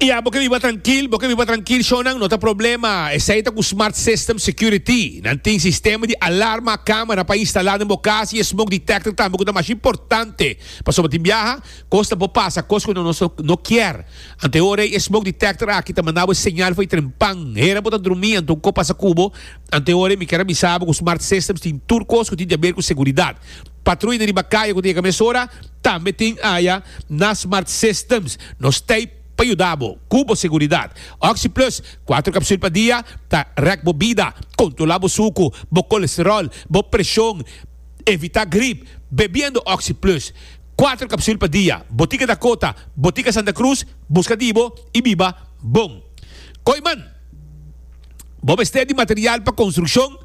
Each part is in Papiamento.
Ya, bo ke biba trankil, bo ke biba trankil, shownan no ta problema. Esei ta ku Smart System Security. Nan tin sistema di alarma, kamera pa instalá den bo kas i e smoke detector tambe ku ta masha importante. Pasobra tin biaha kos ta por pasa, kos ku nos no kier. Anto e ora ei e smoke detector aki ta manda bo e señal for e tren pan. Hera bo ta drumi anto ku ko pasa ku bo. Anto e ora ei mi kier a bisa bo ku Smart Systems tin tur kos ku tin di haber ku seguridat. Patruy di riba kaya ku ta yega mesora tambe tin aya na Smart Systems. Nos t'ey pa yuda bo ku bo seguridat. OxyPlus, kuater kapsul pa dia, ta rèk bo bida, kontrola bo suku, bo kolesterol, bo preshon, evitá grip, bebiendo OxyPlus. Kuater kapsul pa dia. Botica Dakota, Botica Santa Cruz, buska di bo i biba bon. Koy man! Bo mester di material pa construccion,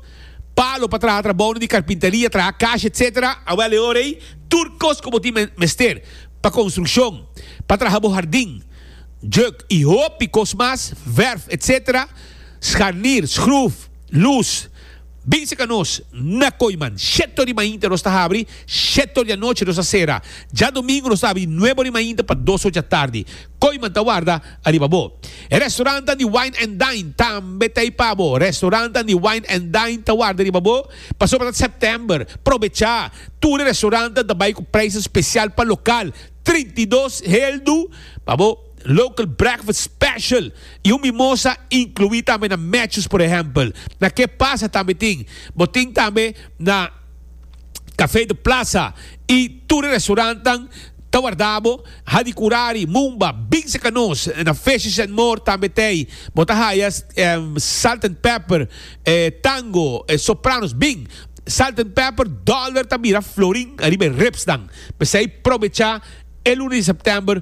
palo pa traha trabounan di carpinteria, traha cash etc. Awel e ora ey tur cos cu bo tin mester pa construccion, pa traha bo hardin, juk y hopi cos mas, verf etc. Scharnier, schroef, luz. Bin seka nos na koy man. Sheto di mainta nos ta habri, sheto di anochi nos ta sera. Djadomingu nos ta habri nuebo di mainta pa dos ocha tardi. Koy man ta warda ariba bo. E restorantan di Wine and Dine tambe ta ei pa bo. Restorantan di Wine and Dine ta warda riba bo pasobra ta September. Probecha! Tur e restorantan ta bai ku prijs spesial pa lokal, trinta i dos heldu pa bo. local breakfast special y un mimosa inclui tambe na matches por ehempel na ke pasa tambe tin bo tin tambe na cafe de plaza y tur e restaurant tan ta warda bo hadi curari mumba binse ca nos na fishes and more tambe tey bo ta haya salt and pepper tango sopranos bin salt and pepper dollar ta bira florin ariba e ribs nan p'esey probecha e luna di September.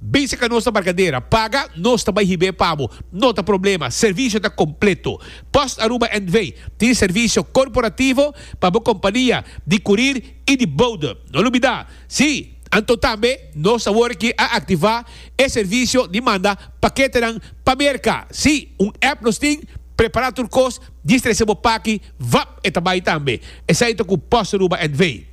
Bisa ka nos na Barcadera, paga, nos ta bai hib'é pa bo. No ta problema, servisio ta kompleto. Post Aruba NV. tin servisio korporativo pa bo kompania di kurir i di boude. No lubidá, Sí, anto tambe nos ta worki a aktivá e servisio di manda paketenan pa Merka. Sí, un app nos tin, prepará tur kos, distrese bo paki, vap, e ta bai tambe. Esei ta ku Post Aruba NV.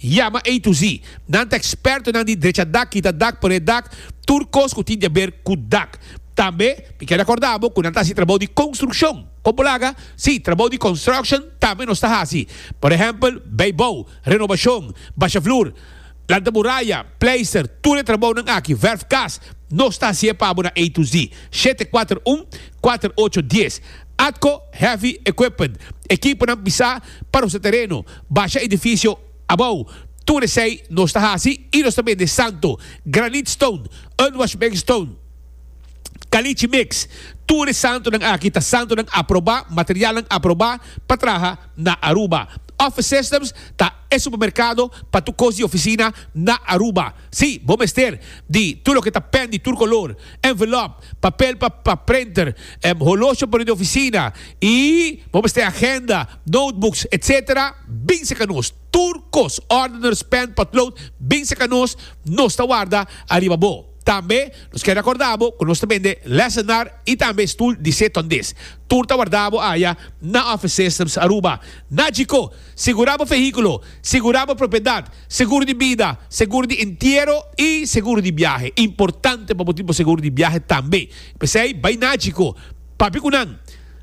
Ya, ma A to Z. Nan ta ekspertonan di drechadad, kitadad, paredad, tur kos ku tin di aber ku dad. Tambe mi kier akordá bo ku nan ta hasi trabou di konstrukshon. Kon bo laga? Sí, trabou di construction tambe nos ta hasi. Por ehèmpel, beibou, renobashon, basha flur, lanta muraya, pleister, tur e trabounan aki, verf kas, nos ta hasié pa bo na A to Z. Shete kuater un, kuater ocho dies. Atco, heavy equipment, ekiponan pisá pa rosá tereno, Basha edifisio abou. Tur esei nos ta hasi i nos ta bende santo, granite stone, unwashed mixed stone, caliche mix. Tur e santonan aki ta santonan aprobá, materialnan aprobá pa traha na Aruba. Office Systems ta e supermerkado pa tur kos di ofisina na Aruba. Sí, bo mester di tur loke ta pen di tur kolor, envelop, papel pa pa printer, holosha pa den di ofisina i bo mester agenda, notebooks, etc. Bin seka nos. Tur kos, ordeners, pen, potlood, bin seka nos, nos ta warda ariba bo. Tambe nos kier rakorda bo ku nos ta bende lesenar i tambe stul di se tondis. Tur ta warda bo aya na Office Systems Aruba. Na Djiko! Segura bo fehíkulo, segura bo propiedat, seguro di bida, seguro di entiero i seguro di biahe. Importante pa bo tin bo seguro di biahe tambe. P'esei bai na Chico, papia ku nan,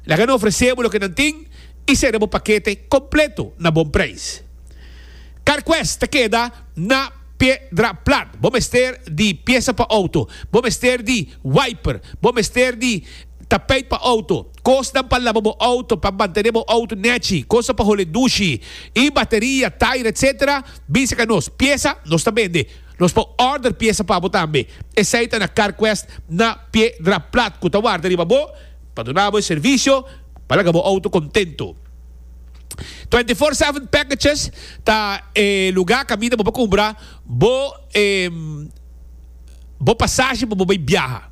laga nan ofresé bo loke nan tin i sera bo pakete kompleto na bon preis. CarQuest ta keda na Piedraplat. Bo mester di piesa pa outo, bo mester di wiper, bo mester di. Tapijt pa auto, kosnan pa laba bo auto, pa mantené bo auto nechi, kosa pa hole dushi, y bateria, tair etc. Bisa ka nos, piesa nos ta bende. Nos por order piesa pa bo tambe. Esai ta na Carquest na Piedra Plat cu ta warda riba bo pa duna bo e servicio pa laga bo auto contento. Twenty Four Seven Packages ta e lugar caminda bo por cumbra bo e bo pasaje pa bo bay biaha.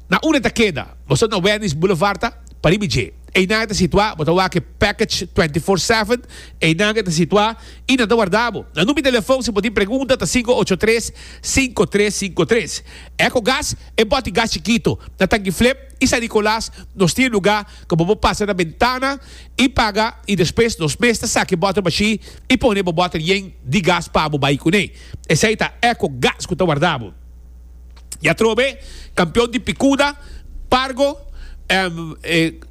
Na ura e ta keda, bo stap na Wendy's Boulevard ta? Pa riba dje. Einan e ta situá, bo ta wak e package twenty four seven, einan e ta situá i nan ta warda bo. Na number di telefon si bo tin pregunta ta sinku ocho tres, sinku tres sinku tres. Ecogas, e bòti gas chikito, na Tanki Flip i San Nicolas nos tin e lugá ku bo por pasa na bentana i paga i despues nos mes ta saki e bòtel bashí i pone bo bòtel yen di gas pa bo bai kuné. Esei ta Ecogas ku ta warda bo. Y atrobe campeon di picuda, pargo,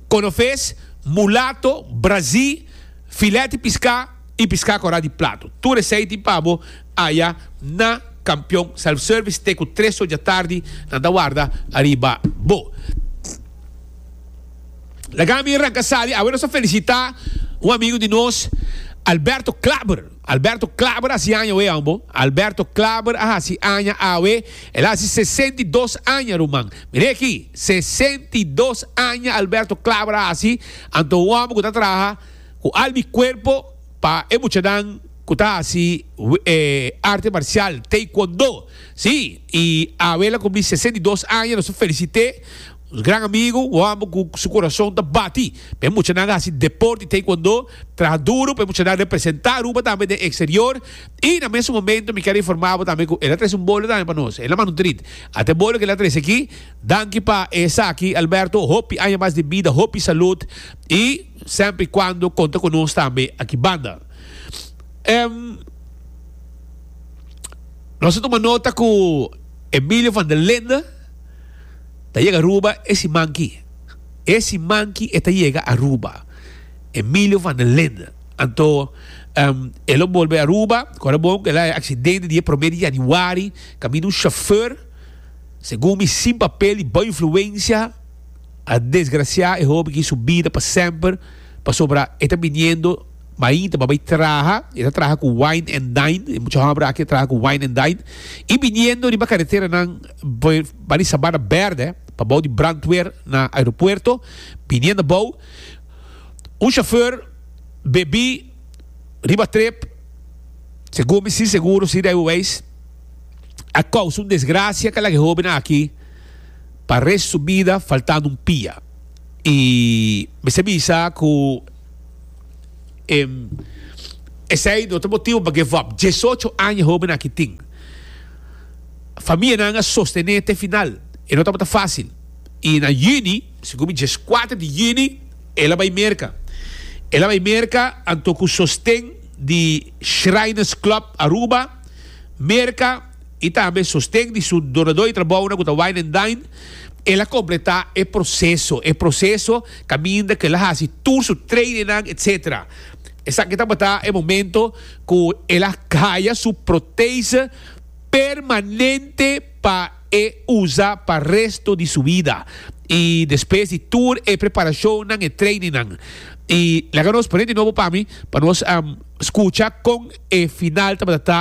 conofes, mulato, brazi, filet di pisca y pisca cora di plato. Tur esey tin pa bo aya na Campeon Self-Service te cu tres oca tardi nan ta warda ariba bo. Laga mi ranca sali, awe nos a felicita un amigo di nos Alberto Klaber. Alberto Klaber a hasi aña awe ambo. Alberto Klaber a hasi aña awe. El a hasi sesenta i dos aña, ruman. Mir'é aki, sesenta i dos aña Alberto Klaber a hasi. Anto un hòmber ku ta traha ku alma i kuerpo pa e muchanan ku ta hasi arte marsial, Taekwondo. Sí, i awe el a kumpli sesenta i dos aña. Nos ta felisit'é. Nos gran amigu wòrdu ku su kurason ta bati pa e muchanan hasi deport i taekwondo, traha duru pa e muchanan representá Aruba tambe den eksterior i na mesun momentu mi kier informá bo tambe ku el a trese un bolio tambe pa nos, el a manda un trit. Ata e bolio ku el a trese aki, danki pa esaki Alberto, hopi aña mas di bida, hopi salud i semper i kuando konta ku nos tambe aki banda. Nos a tuma nota ku Emilio van der Linde. Ta yega Aruba e simanki. E simanki e ta yega Aruba. Emilio van der Linde. Anto, um, e lo bolbe Aruba, kora bon, e la e aksidente di e promé di yanüari, kaminda un shofèr, segun mi, sin papel, di bou influensia, a desgrasiá e hopi aki su bida pa semper, pasobra e ta biniendo mainta pa bai traha, e ta traha ku Wine and Dine, e mucha hòmber aki a traha ku Wine and Dine, i biniendo riba kareteranan. Bo bai di Sabana Berde pa bou di brandweer na aeropuerto, biniendo bou, un chauffeur bebí riba trip, segun mi sin seguro si Rijwe Wijs, a causa un desgracia cu a laga e hobennan aki pa rest su bida faltando un pia y mester bisa cu. Em, esei no ta motibu pa give up. Diesocho aña hobennan aki tin. Famianan a sostené te final. E no tabata fásil. I na yüni, segun mi, dieskuater di yüni, el a bai Merka. El a bai Merka anto ku sosten di Shriners Club Aruba, Merka. i tambe sosten di su donadó di trabounan ku ta Wine and Dine, el a kompletá e proseso. E proseso kaminda ku el a hasi tur su trainingnan etc. Esaki tabata e momento ku el a haya su protese permanente pa e usa pa resto di su bida. I despues di tur e preparashonnan, e trainingnan. I laga nos pone di nobo pa mi pa nos skucha kon e final tabata ta.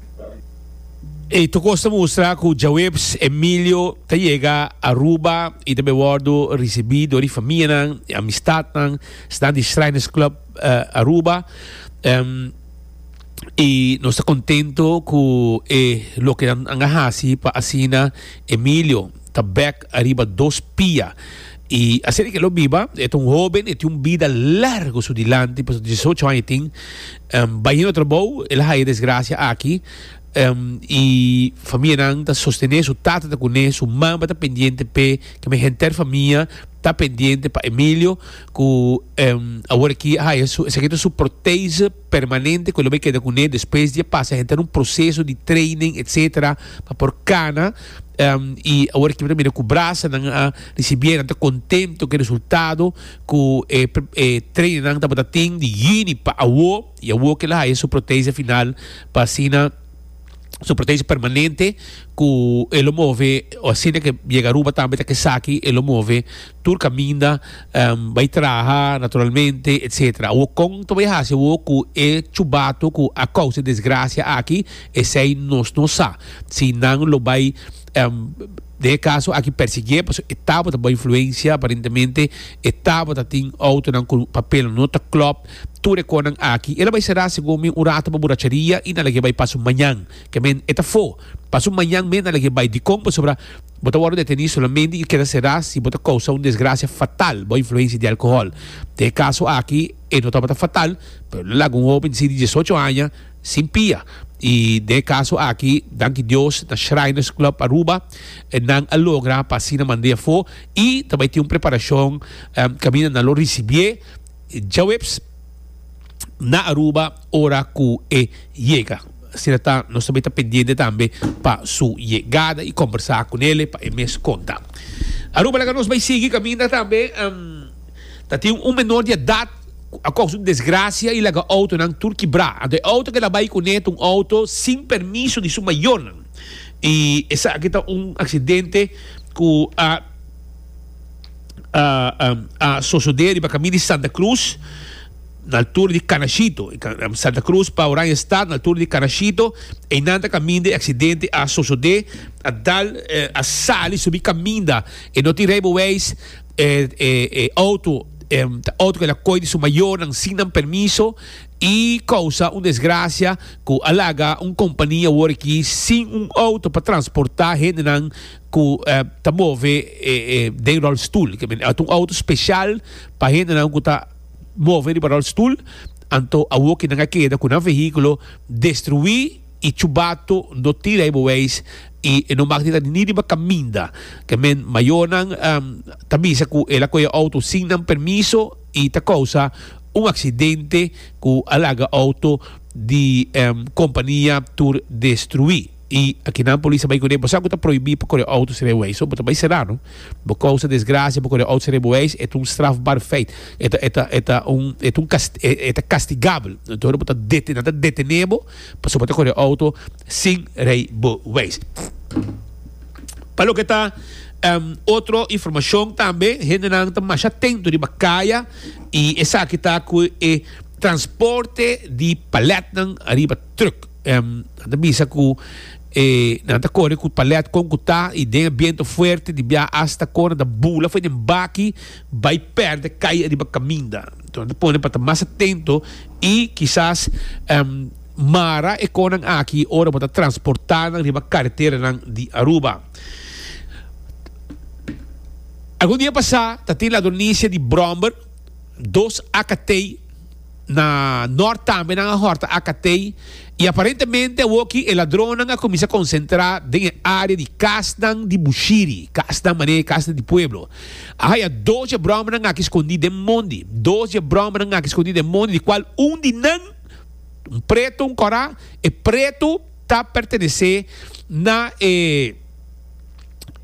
E tokos ta mustra ku djaweps Emilio ta yega Aruba i ta bai wòrdu risibí dor e famianan i amistatnan snan di Shriners Club Aruba. I nos ta kontentu ku e loke nan a hasi pa asina Emilio ta bèk ariba dos pia. I asina ke lo biba, e ta un hóben, e tin un bida largu su dilanti pasobra dies y ocho aña e tin. Bahino trabou el a haya desgracia aki y famianan ta sostene su tata ta cune su mama ta pendiente p'e keme henter famia ta pendiente pa Emilio cu awor aki a haya su esaki ta su prothese permanente cu el a bay keda cune despues di a pasa henter un proceso di training etcetera pa por cana y awor aki mira cu brasanan a ricibi nan ta contento cu e resultado Ku e e trainingnan tabata tin di yüni pa awo, i awo kel a haya su protesia final pa asina su protesia permanente ku e lo move o asina ke yega Aruba tambe ta kesaki e lo move tur kaminda bai traha naturalmente etsetera. Awo kon ta bai hasi awo ku e chubatu ku a kousa e desgrasia aki esei nos no sa si nan lo bai Em, den e kaso aki persiguié pasobra e tabata bai influensia, aparentemente e tabata tin outonan ku papelnan no ta klòp, tur e kònan aki. El a bai será segun mi un ratu pa buracheria i nan lag'é bai paso mañan, ke men e ta fo. Paso mañan men nan lag'é bai. Dikon? Pasobra bo ta wòrdu detení solamente i keda será si bo ta kousá un desgrasia fatal bai influensia di alkohòl. Den e kaso aki e no tabata fatal, pero nan laga un hóben di dies ocho aña, Sin pia. I den e kaso aki, danki Dios, na Shriners Club Aruba nan a logra pa asina mand'é afó i ta bai tin un preparashon kaminda nan lo risibié djaweps na Aruba ora ku e yega. Asina ta, nos ta bai ta pendiente tambe pa su yegada i kombersá ku nele pa e mes konta. Aruba laga nos bai sigui kaminda tambe. Ta tin un menor di edat cu a causa un desgracia y laga autonan tur kibra. Anto e auto cu el a bay cune ta un auto sin permiso di su mayornan y esaki ta un accidente cu a a sosode riba cami di Santa Cruz na altura di Canashito, Santa Cruz pa Oranjestad na altura di Canashito. Eynan ta caminda e accidente a sosode. A dal a sali subi caminda. E no tin rijbewijs. E e auto ta auto cu el a coy di su mayornan sin nan permiso y causa un desgracia cu a laga un compania awor aki sin un auto pa transporta hendenan cu ta move den rol stoel cu men ta un auto special pa hendenan cu ta move riba rol stoel anto awor ki nan a keda cu nan vehiculo destrui. i chubato no tira e boeis i e no mak di ta ni riba kaminda. Ke men mayornan ta bisa ku el a koi e outo sin nan permiso i ta kousa un aksidente ku a laga outo di kompania tur destruí. I akinan polis ta bai kuné, bo sa ku ta proibí pa kore outo ser e boeis? So bo ta bai será no. Bo kousa desgrasia bo kore outo ser e boeis e ta un strafbar feit. E ta e ta e ta un e ta un e ta kastigabel. Entor bo ta nan ta detené bo. Pasobra bo ta kore outo sin rijbewijs. Pa loke ta otro informashon tambe, hendenan ta masha tento riba kaya i esaki ta ku e transporte di palètnan ariba trùk. Nan ta bisa ku nan ta kore ku palèt kon ku ta i den e biento fuerte di biaha asta kon a ta bula for den baki bai perde cai ariba caminda. Enton ta pone pa ta mas atento y kisas mara e conan aki ora bo ta transporta nan riba carreteranan di Aruba. Algun dia pasa ta tin la donecia di bromber, dos akatei, Na nort tambe nan a horta Acatei y aparentemente awoki e ladronnan a cuminsa concentra den e area di casnan di Bushiri, casnan mane casnan di pueblo. A haya dos dje bromnan aki scondi den mondi, dos dje bromnan aki scondi den mondi di cual un di nan, un preto, un cora, e preto ta pertenece na e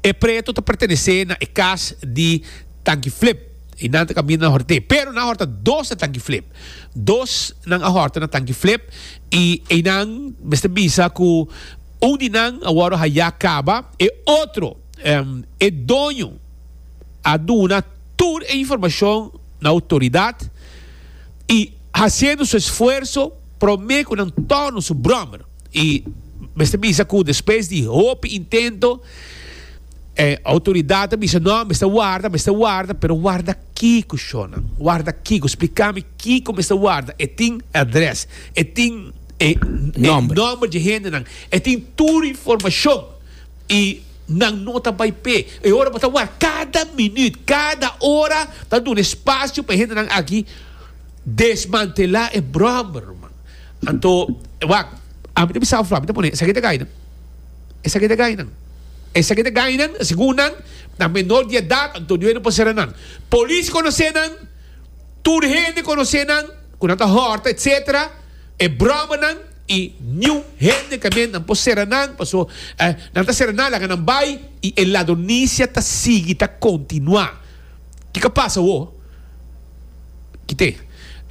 e preto ta pertenece na e cas di Tanki Flip. Y nan ta caminda na horte. Pero nan horta dos na tanki flip. Dos nan a horta na tanki flip y eynan mester bisa cu un di nan a wordo haya caba. E otro, e doño a duna tur e informacion na autoridad y haciendo su esfuerzo prome cu nan torno su brommer. Y mester bisa cu despues di hopi intento. E autoridad a bisa, No, mester warda, mester warda. Pero warda kico, shownan? Warda kico? Splica mi kico mester warda. E tin e adres, e tin e nomber dje hendenan, e tin tur informacion y nan no ta bay p'e. E ora bo ta warda, cada minuut, cada ora ta duna espacio pa e hendenan aki desmantela e brommer, man. Anto, wak, ami ta bisa afloha, ami ta pone esaki ta gay, no? Esaki ta gainan. Esaki ta gainan, segun nan, na menor di edat, anto duer no por sera nan. Polis conoce nan, tur hende conoce nan, cu nan ta horta, etc. E broma nan, y niun hende tambe nan por sera nan, paso nan ta sera nan, laga nan bay, y e ladronicia ta sigui ta continua. Ki ka pasa awo? Kite.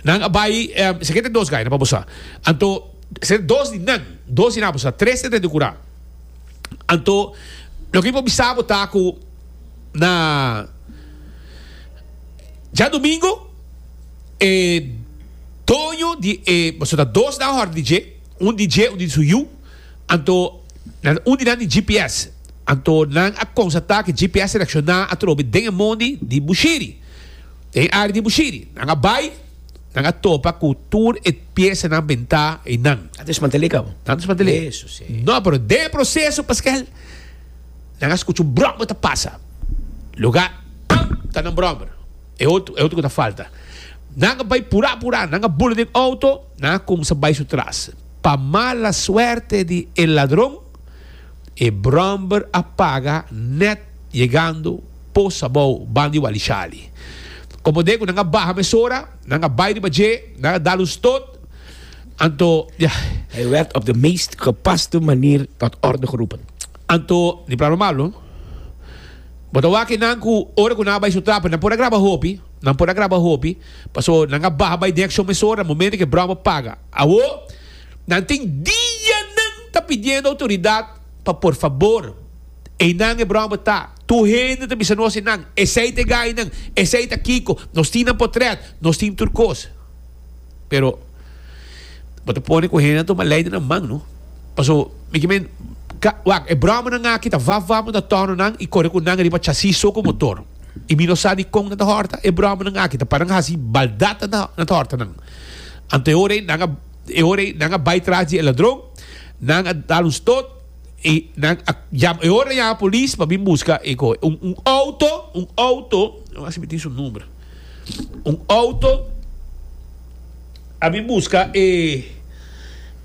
Nan a bai, esaki ta den dos gaina pa bo sa. Anto, esaki ta dos di nan, dos di nan a bo sa, tres ta den di kura. Anto, loke mi por bisa bo ta ku na djadumingu e doño di e, boso ta dos nan hòrda di dje, un di dje, un di su yu. Anto, na un di nan di GPS. Anto, nan a konstatá ku e GPS selekshoná a trobe den e mondi di Bushiri. Den e área di Bushiri. Nan a bai, nan a topa ku tur e piesanan bentá einan. Ta desmantel'é kaba? Ta desmantel'é. Eso sí. No, pero den e proseso paskel nan a skucha un bròmber ta pasa. Lugá A ta nan bròmber. E otro, e otro ku ta falta. Nan a bai purá purá, nan a bula den outo, nan a kumsa bai su tras. Pa mala suerte di e ladron, e bromber a paga nèt yegando pos abou ban di Walishali. Komo den ku nan a baha mesora, nan a bai riba dje, nan a dal un stot, anto di. Hij werd op de meest gepaste manier tot orde geroepen. Anto di pra lo malo, Bo ta wak e nan ku ora ku nan a bai su trap nan por a graba hopi, nan por a graba hopi. Paso nan a baha bai den accion mesora, momento cu e broma paga. Awo, nan tin dianan ta pidiendo autoridad pa por fabor, eynan e broma ta. Tur hende ta bisa nos eynan, esey ta e gainan, esey ta kico, nos tin nan potret, nos tin tur cos. Pero, bo ta pone cu hende a tuma ley den nan man, no? Paso, mi ki men, Ka, wak, e bromanan aki ta vaf vaf, bo ta torno nan y core cu nan riba chasis so cu motor. I mi no sa di kon nan ta hòrta. E bròmanan aki ta paran hasi baldat nan ta nan ta hòrta nan. Anto e ora ei nan a e ora ei nan a bai tras di e ladron, nan a dal un stot i nan a yam e ora yama polis pa bin buska e koe un un outo un outo lo mas si mi tin su number un outo a bin buska e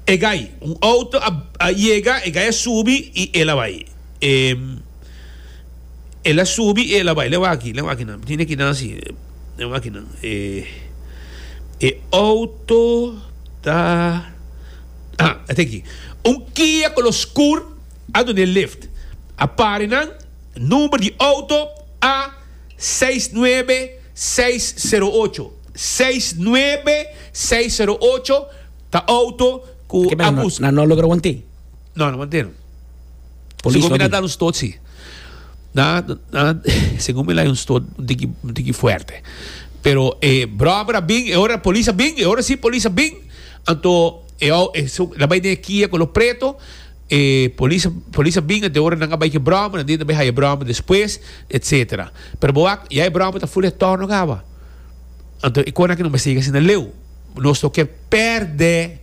e gai un outo a a yega e gai a subi i el a bai. El a subi y el a bai leu aki, leu akinan. Mi tene ki nan asi, leu akinan. E, e auto ta... Ah, e ta aki. Un Kia color scur a duna e lift. A pari nan, number di auto a seis nuebe seis sero ocho. Seis nuebe seis sero ocho ta auto cu a bus. Nan no a logra want'é. No, no mantenan. Polis Segun mi na dal un stot si. Na, na, segun mi lai un stot un tiki, un tiki fuerte. Pero e brobber a bin, e ora polis a bin, e ora si polis a bin, anto e au e so la bai den kia con lo preto, e polis polis a bin anto e ora nan a bai ke brobber, nan tin bai haya brobber despues, etcetera. Pero bo wak ya e brobber ta full retorno kawa. Anto e kon aki no mester yega asina leu. Nos toke perde.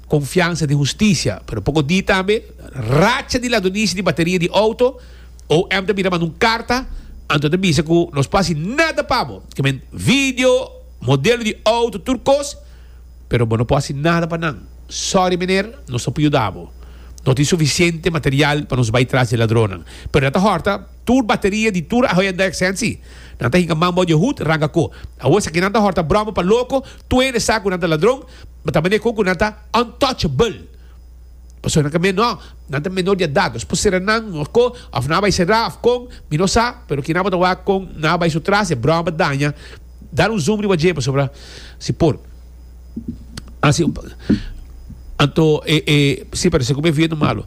konfiansa di hustisia. Pero poko di tambe racha di ladronisi di bateria di outo, OM ta bira manda un karta anto ta bisa ku nos por hasi nada pa bo, ke men video, modelo di outo, tur kos, pero bo no por hasi nada pa nan. Sòri meneer, nos no por yuda bo. No tin sufisiente material pa nos bai tras di e ladronnan. Pero nan ta hòrta tur bateria di tur Hyundai Accent si. Nan ta hinka man bou di e hut, ranga ko. Awor si aki nan ta hòrta bròma pa loko, tuende sa ku nan ta ladron, Ta mane kon ku nan ta untouchable. Pasobra nan ka menó, nan ta menó di edat. Nos por sera nan oko òf nan a bai será òf kon, mi no sa, pero kinan bo ta wak kon nan a bai su tras, e bròha bo daña, dal un zoom riba dje pasobra si por hasi un anto e e si parese ku mi e vientu malu.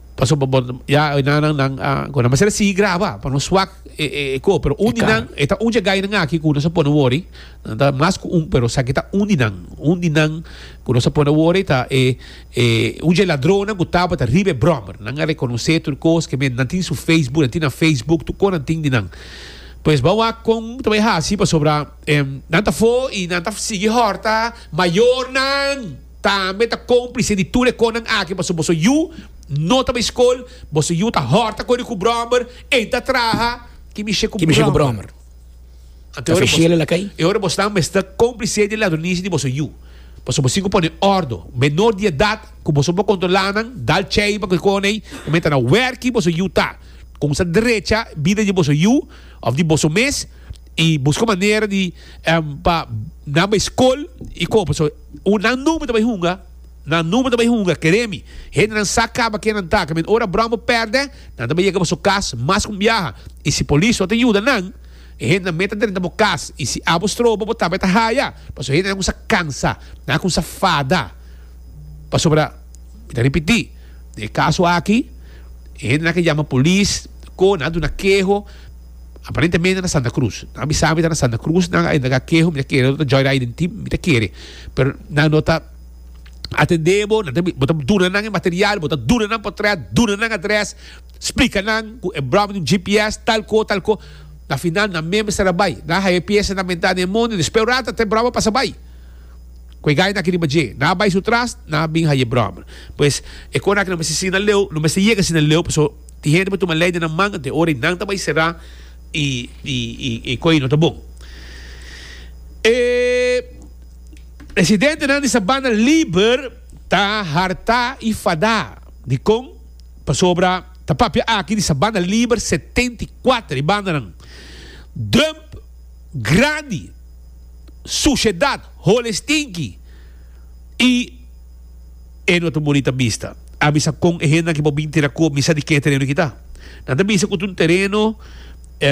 Pasobra bo ya e nannan nan a cuando nan mester a sigui graba pa no swak e e e co pero un di nan e ta un dje gainan aki cu nos a pone wori nan ta mas cu un pero esaki ta un di nan un di nan cu nos a pone wori ta e e un dje ladronnan cu tabata riba e brommer nan a reconoce tur cos ke men nan tin su facebook nan tin nan facebook tur cos nan tin di nan pues bo a wak con ta bay hasi pasobra em nan ta for y nan ta sigui horta mayornan. Tambe ta cómplice di tur e conan aki pasobra boso yu no ta bay scol, boso yu ta horta cori cu brommer, ey ta traha kimishe cu brommer. Ante e ora bos nan mester cómplice di e ladronishi di boso yu, pasobra boso tin cu pone ordo. Menor di edad cu boso por controla nan, dal cey pa cu e coney ta menta na werk ki boso yu ta, cuminsa drecha bida di boso yu of di boso mes y busca manera di pa nan bay scol y cu. Cu nan number ta bay hunga, nan number ta bay hunga, kere mi. Hendenan sa caba ken nan ta, caminda ora Brombo perde, nan ta bay yega boso cas mas cu un biaha, y si Polis no ta yuda nan, e hendenan meta drenta bo cas, y si abo strobo bo tabata haya, pasobra hendenan a cuminsa cansa, nan a cuminsa fada, pasobra, mi ta ripiti, den e caso aki, e hendenan a yama Polis, cu nan a duna keho, Aparentemente na Santa Cruz. Nan a bisa mi ta na Santa Cruz, nan a indaga keho mi ta kere, otro ta joyride den team, mi ta kere. Pero nan no ta atende bo, nan ta bi, bo ta duna nan e material, bo ta duna nan potret, duna nan adres, splika nan cu e brami ta un GPS, talco, talco. Na final nan meme stara bay, nan a haya e pieza, nan a menta den e mono, y despues e rato ta e brami a pasa bay cu e gaya aki riba dje. Nan a bay su tras, nan a bin haya e brami. Pues, e conaki no mester siña leu, no mester yega siña leu, pasobra. Tin hende bo tuma leidernan manga den ora y nan ta bay será y coy no ta bon. E presidentenan di Sabana Liber ta hartá y fadá. Di con? Pasobra ta papia aki di Sabana Liber setenta y cuater di bandanan, dump grandi, suciedad, holes stinky y. E no ta bonita bista. A bisa kon e hendenan ki por bin tira kob, mi sa di ke tereno ki ta. Nan ta bisa ku ta un tereno.